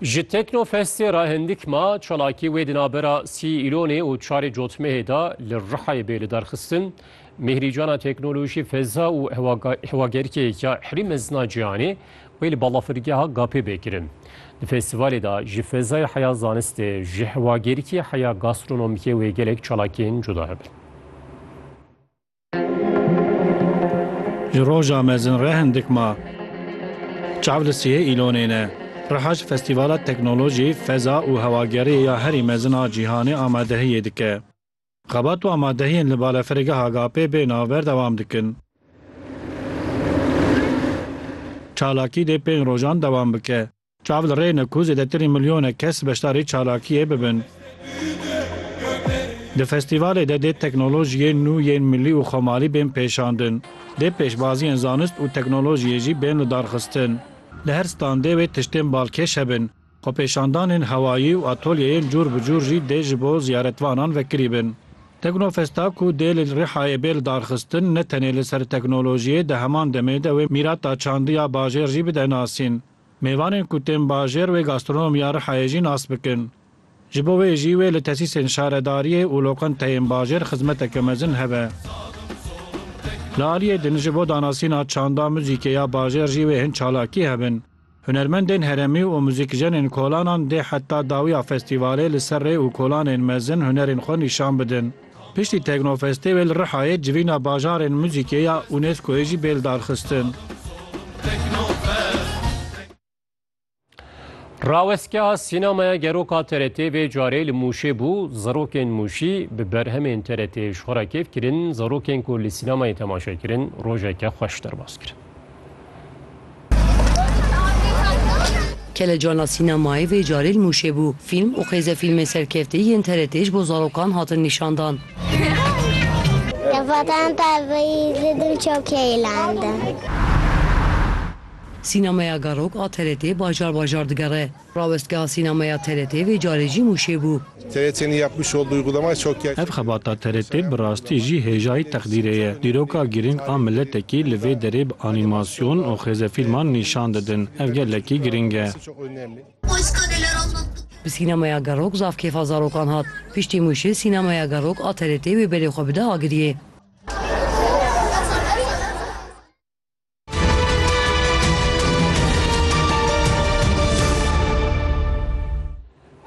Ji Teknofestê re hindik ma çalakî wê di navbera sî îlonê û çarê cotmehê de li Rihayê bê lidarxistin. Mihrîcana Teknolojî, Feza û Hewagerikê ya Herî Mezina Cîhanê wê li balafirgeha Gapê bê kirin. Di festîvalê de ji fezayê heya zanistê, ji hewagerikê heya gastronomîkê wê gelek çalakiyên cuda hebin. Ji roja mezin re hindik ma. Çav li sihê îlonê ne. Riha ji Festîvala Teknolojî, Feza û Hewageriyê ya herî mezin a cîhanê amadehiyê dike. Xebat û amadehiyên li Balafirgeha Agapê bê navber dewam dikin. Çalakî dê pênc rojan dewam bike. Çav li rê ne ku zêdetirî milyonek kes beşdarî çalakiyê bibin. Di festîvalê de dê teknolojiyên nû yên milî û xwemalî bên pêşandin. Dê pêşbaziyên zanist û teknolojiyê jî bên lidarxistin. Li her standê wê tiştên balkêş hebin. Xwepêşandanên hewayî û atolyeyên cûr bi cûr jî dê ji bo ziyaretvanan vekirî bin. Teknofesta ku dê li Rihayê bê lidarxistin ne tenê li ser teknolojiyê di heman demê de wê mîrata çandiya bajêr jî bide nasîn. Mêvanên ku tên bajêr wê gastronom ya Rihayê jî nas bikin. Ji bo wê jî wê li tesîsên şaredariyê û lokanteyên bajêr xizmeteke mezin hebe. Li aliyê din ji bo danasîna çanda muzîkê ya bajêr jî wê hin çalakî hebin. Hunermendên heremî û muzîkjenên kolanan dê heta dawiya festîvalê li ser rê û kolanên mezin hunerên xwe nîşan bidin. Piştî Teknofestê wê li Rihayê civîna bajarên muzîkê ya UNESCO'yê jî bê lidarxistin. Rawestgeha Sînemaya Gerok a TRT'ê vê carê li Mûşê bû, zarokên Mûşî bi berhemên TRT'ê ji xwe re kêf kirin, zarokên ku li sînemayê temaşe kirin rojeke xweş derbas kirin. Kelecana sînemayê vê carê li Mûşê bû. Fîlm û xêzefîlmên serkeftî yên TRT'ê ji bo zarokan hatin nîşandan. Li Vatan Tarbeyî zidim çok heyelandım. Sînemeya Garok a TRT'ê bajar bajar digere. Rawestgeha Sînemeya TRT vê carê jî Mûşê bû. TRT'nin yapmış olduğu uygulamaya çok yer. Ev xebata TRT bi rastî jî hêjayî teqdîrê ye. Dîroka girîng a miletekî li vê derê bi anîmasyon û xêzefîlman nîşan didin. Ev gelekî girîng e. Bi Sînemeya Gerok zaf kêfa zarokan hat. Piştî Mûşê Sînemeya Gerok a TRT'ê wê belê xwe bide Agiriyê.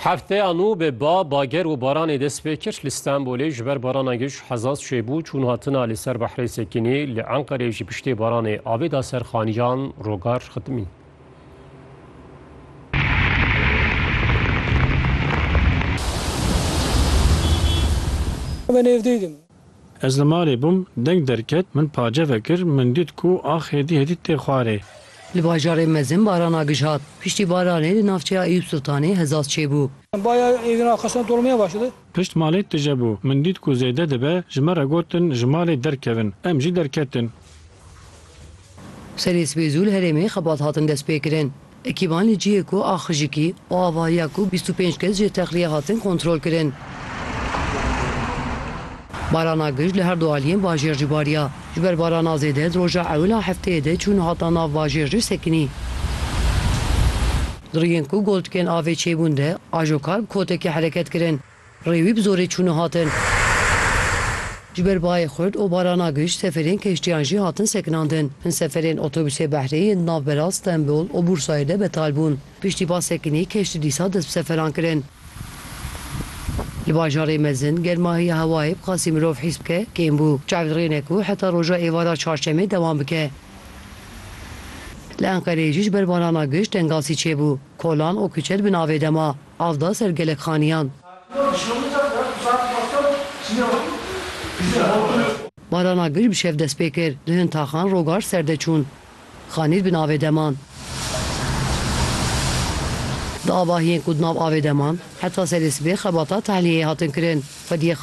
Hefteya nû bi ba, bager û baranê dest pê kir. Li Stenbolê ji ber barana giş hezaz çêbû çûn hatina li ser behrê Sekînê, li Enqerê ji piştê baranê avê da ser xaniyan rogar xitimîn. Ve nêvdîdim. Ez li malê bûm, deng derket, min pace vekir, min dît ku ax hêdî hêdî tê xwarê. Li bajarê mezin baran a gij hat. Piştî baranê li navçeya Eyûp Sultanê hezaz çêbû. Baya êdîn a qestan dolmaya başladı. Pişt malê tije bû. Min dît ku zêde dibe, ji me re gotin ji malê derkevin. Em jî derketin. Serê sibê zû li herêmê xebat hatin destpêkirin. Ekîban li cihê ku a xijikî û ava ye ku bîst û pênc kes jê texliye hatin kontrolkirin. Barana gij li her du aliyên bajêr jî bariya. Ji ber barana zêde di roja ewil a hefteyê de çûn hata nav bajêr jî sekinî. Di rûyên ku goldikên avê çêbûn de ajoka bi kotekê hereket kirin. Rê wî bi zorê çûne hatin. Ji ber bayê xurt û barana giş seferên keştiyan jî hatin sekinandin. Hin seferên otobusê behrê yên di nav Berat, Stenbol û Bursayê de betal bûn. Piştî ba sekinî keştî dîsa dest bi seferan kirin. Li bajarê mezin germahiya hewayê bi qasî mirov hîs bike kêm bû. Çav rêne ku heta roja êvara çarşemê dewam bike. Li Enqereyê jî ji ber barana giş tengasî çêbû. Kolan û kuçe di bin avê de ma. Av da ser gelek xaniyan. Barana gul bi şev dest pê kir. Li hin taxan rogar serde çûn. Xanîr bi navê de man. Di avahiyên ku di nav avê de man, heta serê sibê xebata tehliyeyê hatin kirin. Xwediyê xanîr.